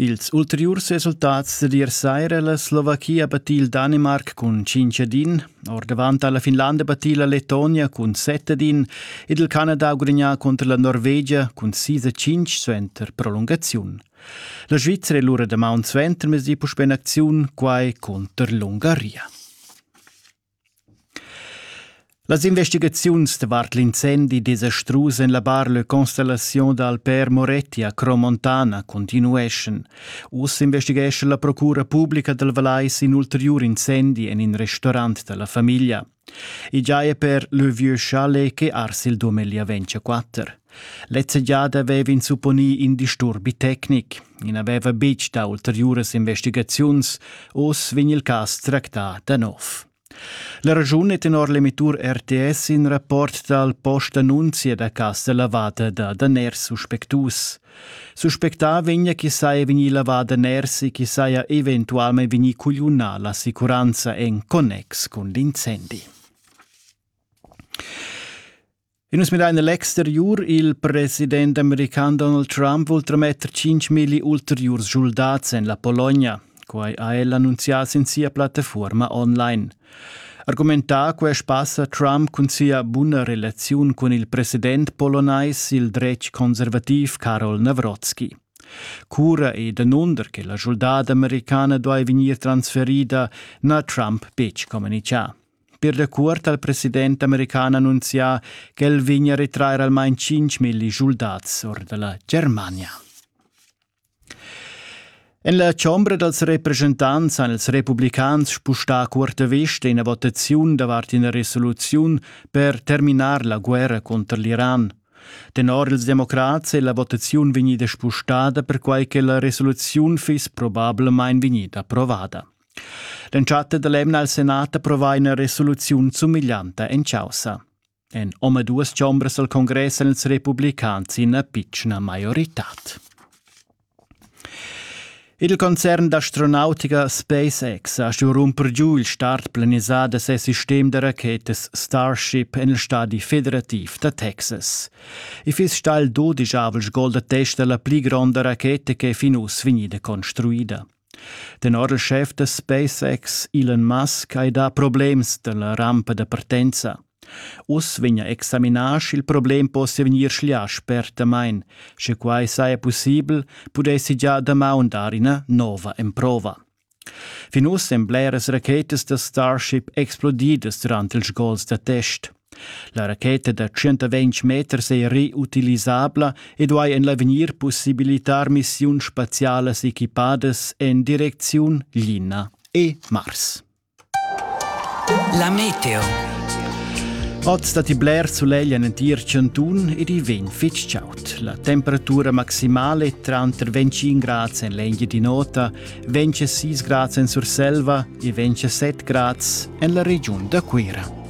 Ils ulteriurs resultats d'ier saira la Slovachia battì il Danimarc cun cinc ad in, ordavant ha la Finlanda battì la Letonia cun set ad in ed il Canada ha gudagnà cunter la Norvegia cun sis a cinc suenter prolungaziun. La Svizzera è lura damaun suentermezdi puspè en acziun, quai cunter l'Ungaria. Las investigaziuns davart l'incendi desastrus en la bar Le Constellation dal Père Moretti a Cromontana continueschan. Uss investighescha la procura publica dal Valais in ulteriur incendi en in restaurant da la famiglia. I giaja per le Vieux Chalet che ars il Dumelia 24. Lezza giada vev'ins supponì in disturbi tecnic. I n'aveva betg dà ulteriuras investigaziuns. Oz vegn il cas tractà da nov. La raschun è tenor l'emittur RTS in rapport dal postannunzia da cas da lavada da daners suspectus. Suspectà vegnia chi saja vegnì lavà daners e chi saja eventualmente vegnì cugliunà l'assicuranza en connex cun l'incendi. E nus midain a l'exteriur. Il president american Donald Trump vul trametter 5.000 ulteriurs schuldats en la Pologna. Quai ha el annunzià sin sia plattafuorma online. Argumentà quest pass ha Trump cun sia buna relaziun cun il president polonais, il dretg conservativ Karol Nawrocki. Cura e danunder che la schuldada americana duai vegnir transferida n'ha Trump betg communichà. Per da cuort ha il president american annunzià ch'el vegn a retrair almain tschinch milli schuldats or dalla Germania. En la chombra dals represchentants han ils republicans spustà cuorta vesta ina votaziun davart ina resoluziun per terminar la guerra conter l'Iran. Tenor ils democrats è la votaziun vegnida spustada perquai che la resoluziun fiss probablamain vegnida approvada. L'entschatta dell'emna al Senat approvà ina resoluziun sumiglianta en causa. En omaduas chombras al Congress èn ils republicans ina pitschna maioritad. Il concern d'astronautica SpaceX ha stuì rumper giu il start planisà da ses sistem da rachetas Starship en il stadi federativ da Texas. I fiss stà il dodischavels gol da testa la pli gronda racheta ch'è fin uss vegnida construida. Tenor il schef da SpaceX Elon Musk hai dà problems dalla rampa da partenza. Uss vegn a examinar sch'il problem possia vegnir schlià spertamain. Sche quai saja pussibel, pudessi gia damaun dar ina nova emprova. Fin uss èn bleras rachetas da Starship explodidas durant ils gols da test. La racheta da 120 meters è reutilisabla e duai en l'avegnir pussibilitar missiuns spazialas equipadas en direcziun Lina e Mars. La meteo. Oz datti bler sulegl en entir chantun ed i vegn fitg chaud. La temperatura maximale è tranter 25 grads en l'Engiadin'Ota, 26 grads en Surselva e 27 grads en la regiun da Cuira.